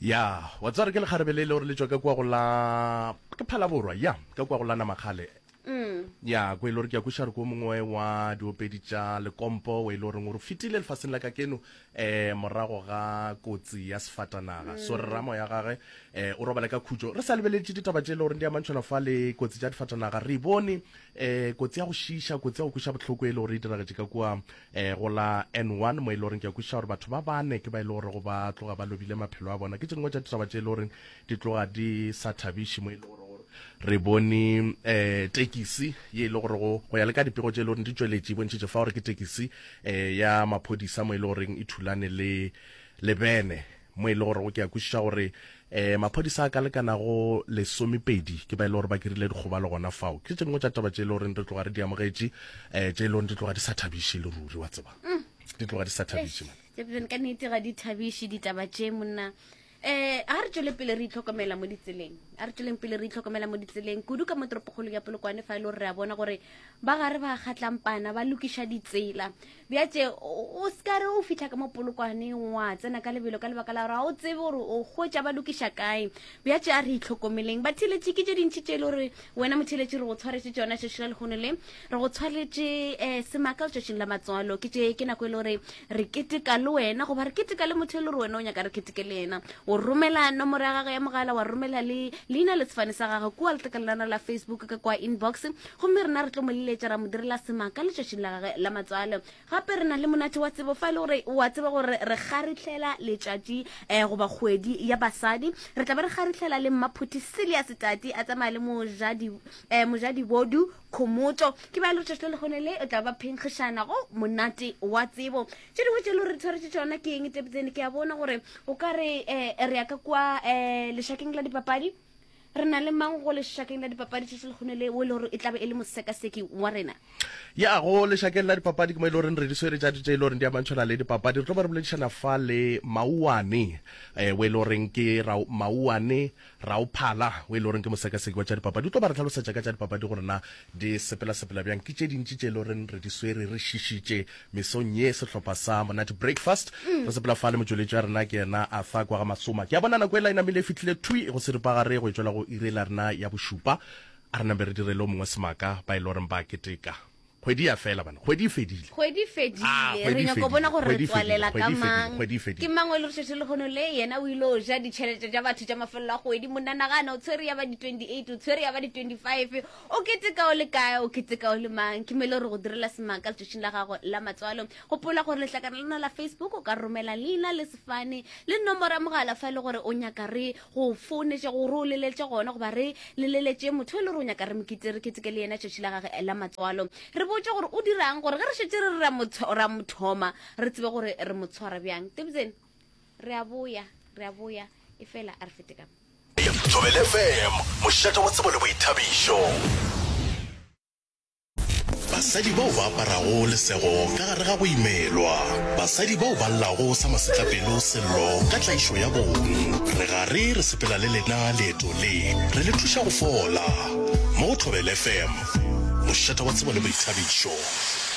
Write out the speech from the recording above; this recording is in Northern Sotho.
Ya, wa tseba gore ke lekgarebe le e le gore le tšwa ka kua go la ke phalaborwa ya ka kua go la namakgale ya ko e le gore ke ya kweša gore ko mongwe wa diopedi tša lekompo o e le goreng o re fetile lefaseng la ka keno um morago ga kotsi ya sefatanaga so re ramo ya gage um o robale ka khutšo re sa lebeletše ditaba tše e le goreng di amantšhwana fa le kotsi tša difatanaga re e bone um kotsi ya go šiiša kotsi ya go kweša bohloko e le gore e diragetše ka kua e go la N1 mo e le goreng ke a kwešiša gore batho ba bane ke ba e le gore go ba tloga ba lobile maphelo a bona ke tše dingwe tša ditaba tše e le goreng di tloga di sa thabiše mo e le gore re bone um tekisi ye e le gore go ya le ka dipego tše e le goreng di tšweletše e bontšhitše fa gore ke tekisi um ya maphodisa mo e le goreng e thulane le le bene mo e le gorego ke a kwešiša gore um maphodisa a ka lekanago lesomepedi ke ba e le gore ba kirile dikgobalo gona fao ke tše dingwe tša taba tše e le goreng re tloga re di amogetše um tše e le goreng di tloga di sa thabiše le ruri wa tseba mm. di tloga di sa thabiše man ka nnete ga di thabiše ditaba tše monna eh a re tswele pele re itlhokomela mo ditseleng a re tsweleng pele re itlhokomela mo ditseleng kudu ka mo toropokgolo ya polokwane fa e le gore re a bona gore ba gare ba kgatlampana ba lokiša ditsela bjatše o seka re o fitlha ka mo polokwaneng wa tsena ka lebelo ka lebaka la gore ga o tsebe gore o kgotša ba lokiša kae bjatše a re itlhokomeleng ba theletše ke tše dintšhi tše e le gore wena motheletše re go tshwaretše tsona tšatši la lekgono le re go tshwaretše um semaka letšatšing la matswalo ke tše ke nako e le gore re keteka le wena goba re keteka le motho e le gore wena o nyaka re keteke le yena o romela nomoro ya gage ya mogala wa romela le leina le sefane sa gage kua letlakalenana la facebook ka kwa inbox Gomme rena re tlo mo leletša ra mo direla sema ka letšatšing la gage la matswalo. Gape re na le monate wa tsebo fa e le gore o a tseba gore re kgarihlela letšatši um goba kgwedi ya basadi. Re tla be re kgarihlela le mmaphuthi Silias Tati a tsamaya le mojadi um mojadibodu Khomotšo. Ke bjalo letšatši le lekgone le o tla ba phenkgišana go monate wa tsebo. Tše dingwe tše le gore re tshwaretše tšona ke eng tepetsene ke a bona gore o ka re um re ya ka kua um lešakeng la dipapadi re na le mang go lešakeng la dipapadi tšatši lekgone le o e le gore e tlabe e le mosekaseki wa rena ya go lešakeng la dipapadi ke mo e le goreng re di swere tša ditše e le goreng di amantšhwana le dipapadi re tlo ba re boledišana fa le mauane um o e le goreng ke mauane raophala o e le goreng ke mosekaseki wa tša dipapadi o tlo ba re tlhalosetša ka tša dipapadi gore na di sepela sepela bjang ke tše dintši tše e le goreng re di swere re šišitše Mesong ye sehlopha sa Monate Breakfast re sepela fa le motšweletši wa rena ke yena Arthur kwa ga Masoma. Ke a bona nako e la e namile e fihlile thwi go seripagare go e tšwela go iri la rena ya bošupa. A re nambe re direle o mongwe semaka ba e le goreng ba keteka. Kgwedi ya fela bana. Kgwedi e fedile. Kgwedi e fedile. Ah, kgwedi re nyako bona gore re tswalela ka mang. Kgwedi e fedile. Ke mang o le re šetše le kgono le yena o ile o ja ditšhelete tša batho tša mafelelo a kgwedi. Monanagana o tshwere ya ba di 28, o tshwere ya ba di 25. O keteka o le kae? O keteka o le mang? Ke mele gore go direla semaka letšatšing la gago la matswalo. Gopola gore lehlakana la rona la Facebook o ka romela leina le sefane le nomoro ya mogala fa e le gore o nyaka re go founetše gore o leleletše gona goba re leleletše motho e le gore o nyaka re mokete re keteke le yena letšatši la gage la matswalo. Re botše gore o dirang gore ge re šetše re ra mothoma re tsebe gore re mo tshwara bjang. Tebzeni. Re a boya, re a boya, efela a re fete ka. Thobela FM, mošate wa tsebo le boithabišo. Basadi bao ba aparago lesego ka gare ga go imelwa, basadi bao ba llago sa masetlapelo Sello ka tlaišo ya bong, re gare re sepela le lena leeto le, re le thuša go fola. Mo go Thobela FM, mošate wa tsebo le boithabišo.